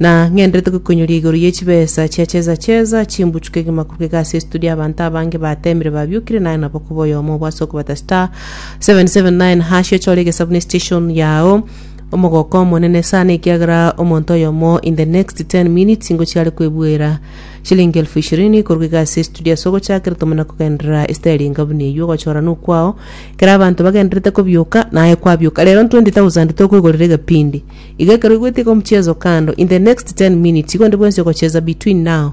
Na ng'enderete gokoinyoria igoro ye chibesa chia cheza cheza, chimbuchuka egima korwa egasi esituri y'abanto abange bateemire babiokire naye nabo koba oyomo obo ase okobata star 779 hash ochore egesabuni station yao omogoka omonene sana ekiagera omonto oyomo in the next 10 minutes ingo chiare kwebuera shilingi elfu ishirini korwa egasi esituri ase ogochakera tomo na kogenderera esiteri engabuni eywo ogochora nokwao kera abanto bagenderete kobioka naye kwabioka rero 20000 tokoigorera egepindi Iga ekero oigwete iga omochiezo kando, in the next ten minutes igo onde bwensi ogochieza between now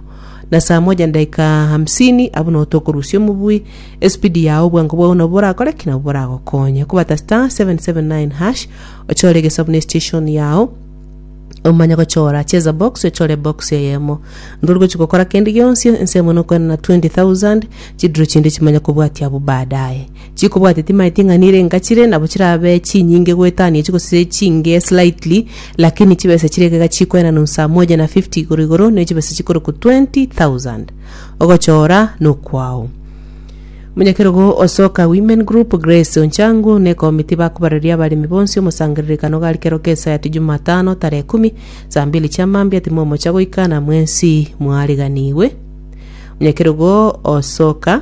na saa moja na dakika hamsini abwo noo tokorusia omobui, espidi yao obwango bwao nabo borakore ki? Nabo boragokonye. Okobata star 779 hash, ochore egesabu ne station yao, omanye gochora cheza box ochore box eyemo ndori gochi gokora kende gionsi ensemo nokoenana 20000 chidiro chinde chimanye kobwatia abwo baadaye Chikobwate timaeti ng'a nire ngachire, nabo chirabe chinyinge goetania echi gose chinge slightly, lakini chibesa chire ekega chikoena nonsi saa moja na fifty igoro igoro, ne chibesa chikorokwa twenty thousand. Ogochora nokwao. Omonyakerogo o Soka Women Group, Grace Oncangu, na ekomiti bakobareria abaremi bonsi omosangererekano gari kero kesayato Jumatano tarehe ikumi, saa mbili chia mambia timomocha goika na mwensi mwariganigwe. Omonyakerogo o Soka.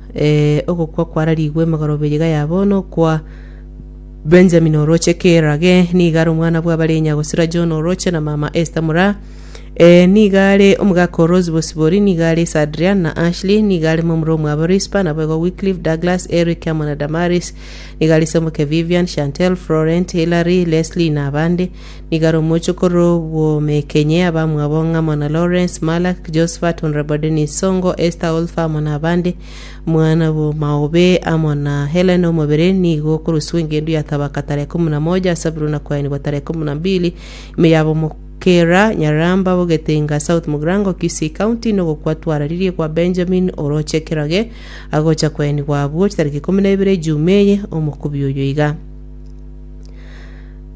Ee, ogokwa kwararigwe magoroba eyio gaya bono okwa Benjamin oroche Kira ge niga are omwana bw'abare nyagosira John oroche na mama Esther mura Ee, niga are omogaka o Rose Bosibori niga are ase Adrian na Ashley niga are momura omwabo Rispa naboigo Wycliffe Douglas Eric amo na Damaris niga are ase omoke Vivian Chantel Florent Hilary Leslie na abande Nigo are omochie korwa obwomekenye abamwabo ng'a amo na Lawrence, Malak, Josephat, Honourable Dennis Songo, Esther Olfa amo nabande. Omwana bwo Maobe amo na Helen omobere nigo okoruswa engendu ya Tabaka tarehe ikomi na moja ase Abril na koyanigwa tarehe ikomi na mbili ime yabo Mokera, Nyaramba, Bogetenga, South Mugrango, Kisii County, na ogokwa twararirie kwa Benjamin oroche ekeroge agocha koyanigwa abwo chitariki ikomi na ibere Juma eye, omokubi oyo iga.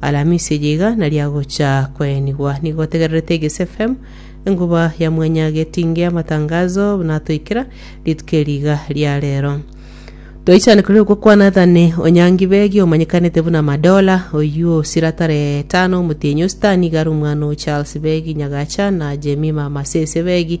Alamisi eye iga nariagocha koenigwa. Nigo otegererete Egesi FM, enguba ya mwanya getinge amatangazo natoikera rituko eri iga ria rero. Toichane kore okwo kwa Nathani Onyangi Begi omanyekanete buna Madola, oyio osira tarehe tano omotienyi o Sitani igare omwana o Charles Begi Nyagacha na Jemima Masese Begi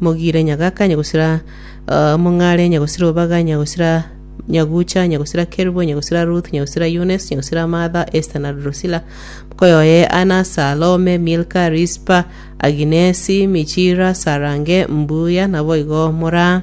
Mogire nyagaka, nyagosira Mong'are, nyagosira Obaga, nyagosira Nyagucha, nyagosira Kerubo, nyagosira Ruth, nyagosira Eunice, nyagosira Martha, Esther na Drusilla, mokoyo oye Anna, Salome, Milka, Rispa, Aginesi, Michira, Sarange, Mbuya, naboigo mora.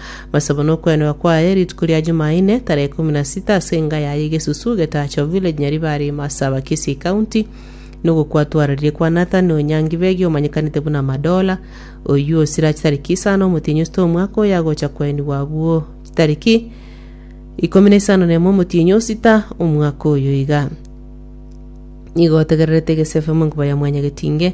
Masabo nokwenerwa kwaye rituko ria Jumaine, tarehe ikomi na sita ase enga yaye Gesusu, Getacho Village, Nyaribari, Masaba, Kisii County, nogokwatwararire kwa Nathan Onyangi Begi omanyekanete buna Madola, oyio osira chitariki isano omotienyi osito omwaka oyo agocha koenigwa abwo chitariki ikomi na isano nemo omotienyi osita omwaka oyo iga. Nigo otegererete Gesefe monkuba ya Mwanyagetinge.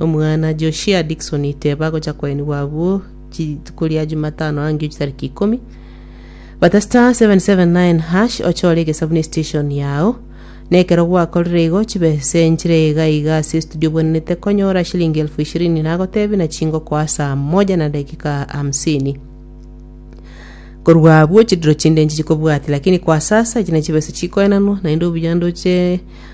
Omwana Joshia Dickson Iteba agocha koenigwa abwo rituko ria Jumatano angio chitariki ikomi. Bata star 779 hash ochore egesabu ne station yao. Na ekero gwakorire igo chibe senchire iga iga ase estudio obwenenete konyora shilingi elfu ishirini nagotebi na chingokoa saa moja na dakika hamsini. Korwa abwo chidiro chinde nchichi kobwati lakini kwa sasa echi nachibe ase chikoenanwa naende obuya ndoche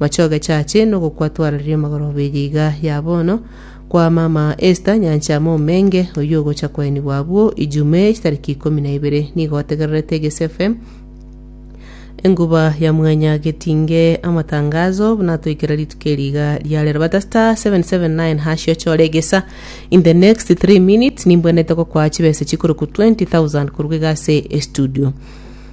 Mochie ogechache nogokwa twararire amagoro bw'eria iga ya bono kwa mama Esther Nyancha momenge, oyio ogocha koenigwa abwo Ijumaa chitariki ikomi na ibere. Nigo otegererete Egesu FM enguba ya mwanya getinge amatangazo buna atoikera rituko eri iga ria rero. Bata star 779 hash ochore egesa in the next 3 minutes nimbwenete gokwaa chibesa chikorokwa 20,000 korwa iga ase estudio.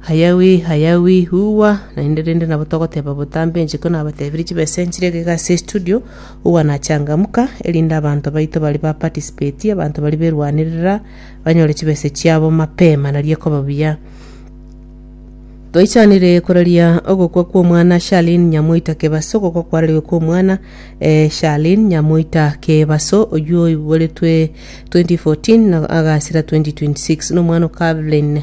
Hayawi, hayawi, uwa, naende rende nabo togoteba botambe inche ko nabatebirie chibesa nchire egega ase estudio, uwa na changamuka, erinde abanto baito baria ba participate, abanto baria berwanerera, banyore chibesa chiabo mapema, nari ekoba buya. Twaichanire koraria ogokwa kwa omwana Shalin Nyamoita Kebaso ogokwa kwarariwe kwa omwana eh, Shalin Nyamoita Kebaso oywo oiboretwe 2014 na agasira 2026 na omwana o Calvin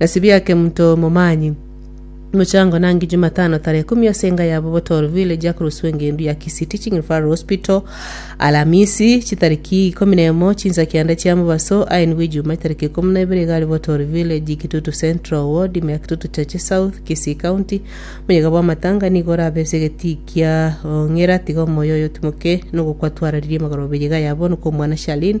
Nasibiake mto momanyi. Mochango nangi Jumatano tarehe kumi ase enga yabo Botor Village akoroswa engendu ya Kisii Teaching Referral Hospital Alamisi chitariki ikomi nemo chinsa kianda chia mobaso aye nigo Ijumaa itariki ikomi na ibere iga are Botor Village Kitutu Central Ward ime ya Kitutu Chache South Kisii County Moyega bwa amatanga nigo orabe ase egetii kia ong'era tiga omoyo oyo otimoke nogokwa twararirie magoro beyega yabo nokomwana Shalin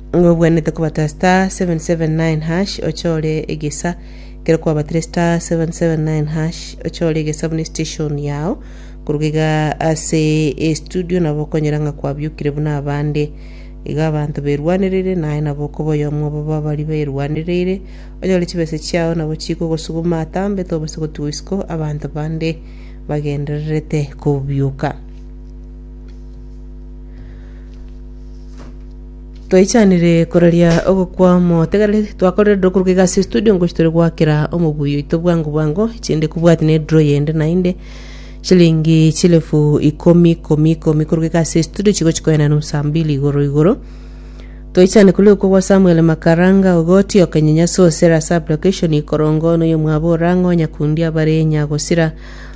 Ng'a obwenerete kobata *779# ochore egesa. Ekero kwabatire *779# ochore egesa buna estation yao. Koruga iga ase estudio nabo okonyora ng'a kwabiokire buna abande. Iga abanto berwanereire naye nabo okoba oyomo obo babari berwanereire. Onyore chibesa chiao nabo chikogosuguma atambe tobasa gotigwa isiko abanto bande bagendererete kobioka. Twaichanire koraria ogokwama otegereri twakorire draw korwa egasi studio ngochi tore goakera omoguyo oito bwango bwango chinde kobwati ne draw yende naende chilingi chilefu ikomi ikomi ikomi korwa egasi ya studio chigochi koenda ase nusa mbili igoro igoro toichane kore okwo gwa Samuel Makaranga ogoti okanyenyaso osera sub location ikorongo noyo mwabo orang'o nyakundi abare nyagosira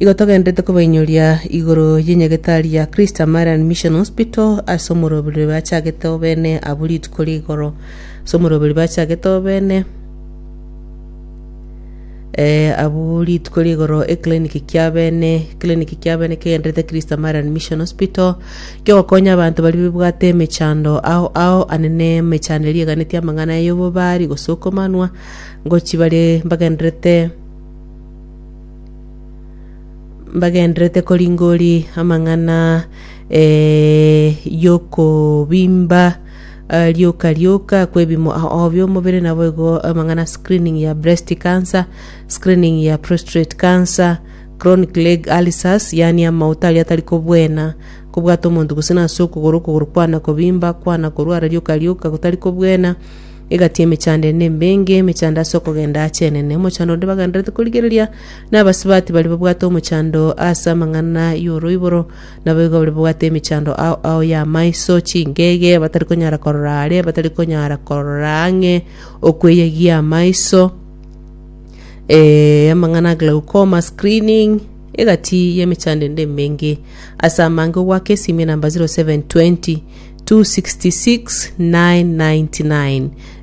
Igo togenderete kobainyoria igoro y'enyagetari ya Christian Marian Mission Hospital ase omoroberio bachagete obene abwo rituko ria igoro. Ase omoroberio bachagete obene eh, abwo rituko ria igoro eclinic kia bene eclinic kia bene kegenderete Christian Marian Mission Hospital kiogokonya abanto baria babwate emechando ao ao ane ne emechando eria eganetie amang'ana y'obobari gosukomanwa ngochia bare mbagenderete mbagenderete koringoria amang'ana eh, y'okobimba eh, rioka rioka kwebimo obi omobere nabo igo amang'ana screening ya breast cancer screening ya prostate cancer chronic leg ulcers yani amauta aria atari kobwena kobwata omonto gose nase okogoro okogoro kwana kobimba kwana korwara rioka rioka gotari kobwena Egati emechando ende mbenge, emechando ase okogenda aachenene. Omochando onde bagendererete korigereria nabasibati baria babwate omochando ase amang'ana y'oroiboro, naboigo baria babwate emechando ao ao y'amaiso, chingege, batari konyara korora aare, batari konyara korora ang'e, okweyegia amaiso, eh, amang'ana a glaucoma, screening, egati y'emechando ende mbenge. Ase amange ogwaka esimia namba 0720.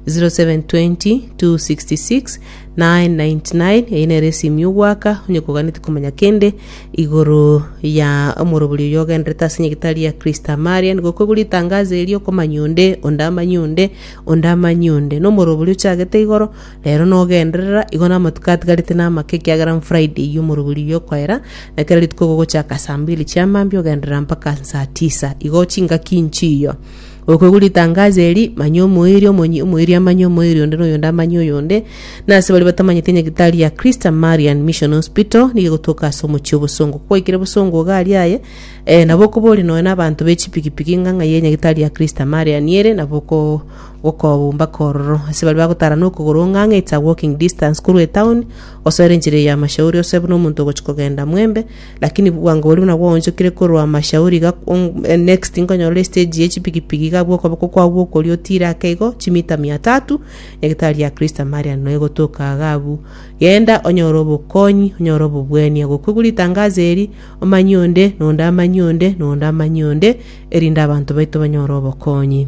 0720 eye nere esimi y'ogwaka onye koganeti komanya kende igoro ya omorobori oyo ogenderete ase nyagetari ya kristo amaria nigo okoigwa ritangazo erio okomanya onde onde amanye onde onde amanye onde nomorobori ochagete igoro Rero nogenderera, igo namatuko atigarete namake, ekiagera n'Friday y'omorogori y'okoera, na kera rituko gogochaka saa mbili chia mambia ogenderera mpaka saa tisa. Igo chingaki nchiyo. Okwegwa ritangazo eri, manya omoiri, omonyi, omoiri amanye omoiri onde, na oyonde amanye oyonde. Na ase baria batamanyeti enyagitari ya Christa Marian Mission Hospital, nigo egotoka ase omochie o Bosongo. Kwaikire Bosongo iga aria aye, eh, nabo okoboria nonya nabanto be chipikipiki ng'a ng'ai enyagitari ya Christa Marian ere, nabo oko gokobumba kororo, ase baria bagotara nokogoro ong'ang'e it's a walking distance korwa etown gosoera enchera eyo y'amashauri ose buna omonto ogochi kogenda mwembe lakini bwango boria buna gwaonchokire korwa amashauri iga ong- next nkonyorora estage ye chipigipigi iga abwo okoboko kwao gwokoria otire ake igo chimita mia tatu nyagetari ya kristo amaria noe gotoka iga abwo genda onyore obokonyi onyore obobweni agwo okoigwa ritangazo eri omanye onde na onde amanye onde na onde amanye onde erinde abanto baito banyore obokonyi.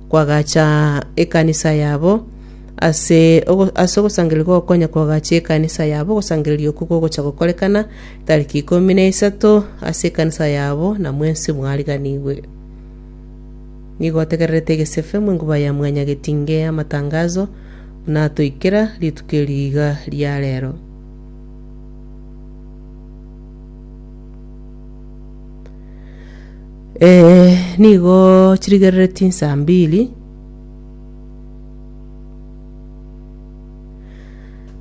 Kwagacha ekanisa yabo. Ase ogo- ase ogosangereria gokonya kwagacha ekanisa yabo, ogosangereria okwo kogocha gokorekana tariki ikomi na isato ase ekanisa yabo, na mwensi mwariganigwe. Nigo otegererete egesefe mu enkuba ya mwanyagetinge amatangazo, buna atoikera rituko eri iga ria rero. Ee, nigo chirigerereti insa mbiri.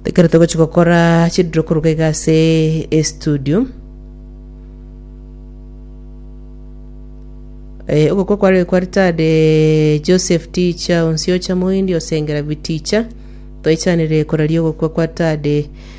Ekero togochi gokora chidiro koruga iga ase estudio. Eh, ogokwa kware kwa retired eh, Joseph Ticha Onsiocha Moindi osengera Biticha. Toichanire koraria ogokwa kwa Tade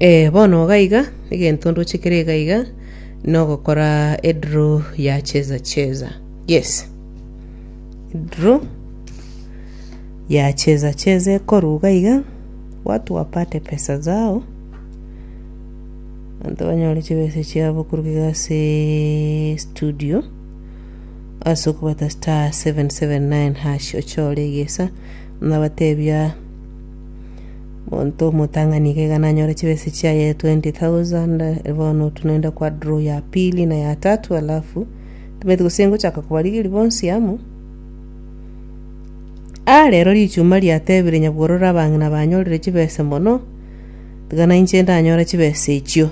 Eh, bono iga iga, egento ndoche kere iga iga, nogokora edraw ya cheza cheza. Yes. Draw ya cheza cheza ekorwa iga iga, watu wapate pesa zao, abanto banyore chibesa chiabo korwa iga ase studio, ase okobwata star seven seven nine hash ochore egesa, nabatebia. Monto omotang'ani iga iga nanyore chibesa chiaye 20,000 eh, bono otunaenda kwa draw ya pili na ya tatu alafu tumeti gose ngochaka kobarigeri bonsi amo Ah, rero richuma riatebire nyabwororo abang'ina banyorire chibesa mono tiga nainche ndanyore chibesa echio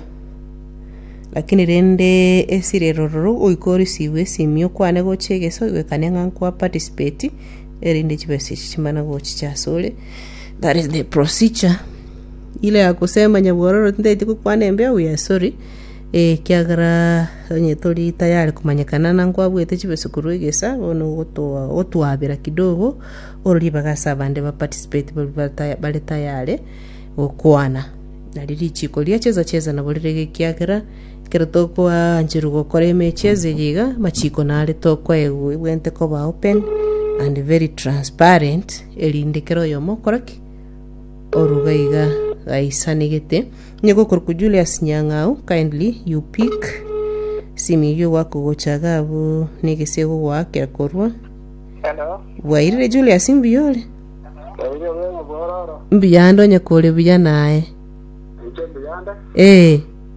lakini rende esiri erororo goika orisive esimi okwane gocha egeso oigwekane ng'a nkwa participeti. erinde chibesa echi chimana gochicha asore, that is the procedure. Ile agosema nyabwororo tindaeti gokwana embeo, we are sorry, eh, ekiagera onye tori tayari komanyekana na nkwabwete chibesa korwa egesa, bono ogotoa- ogotwabera kidogo, ore ribaga ase abande ba participate baria bata- bare tayare gokwana. Nario richiko riacheza cheza nabo rirege ekiagera. Ekero tokwancherwa gokora emechi esegi iga, amachiko nare tokwaegwente koba open and very transparent, erinde kera oyomo okora ki? oruga iga gaisanegete. Onye gokorokwa Julius Nyang'au, kindly you pick simu eyio ogwake ogocha iga abwo na egesego gwaakera korwa. Hello. Bwairire Julius mbuya ore? Bwaire bwega bwororo. Mbuya ande onye kore buya naye. Inche mbuyande. Eh.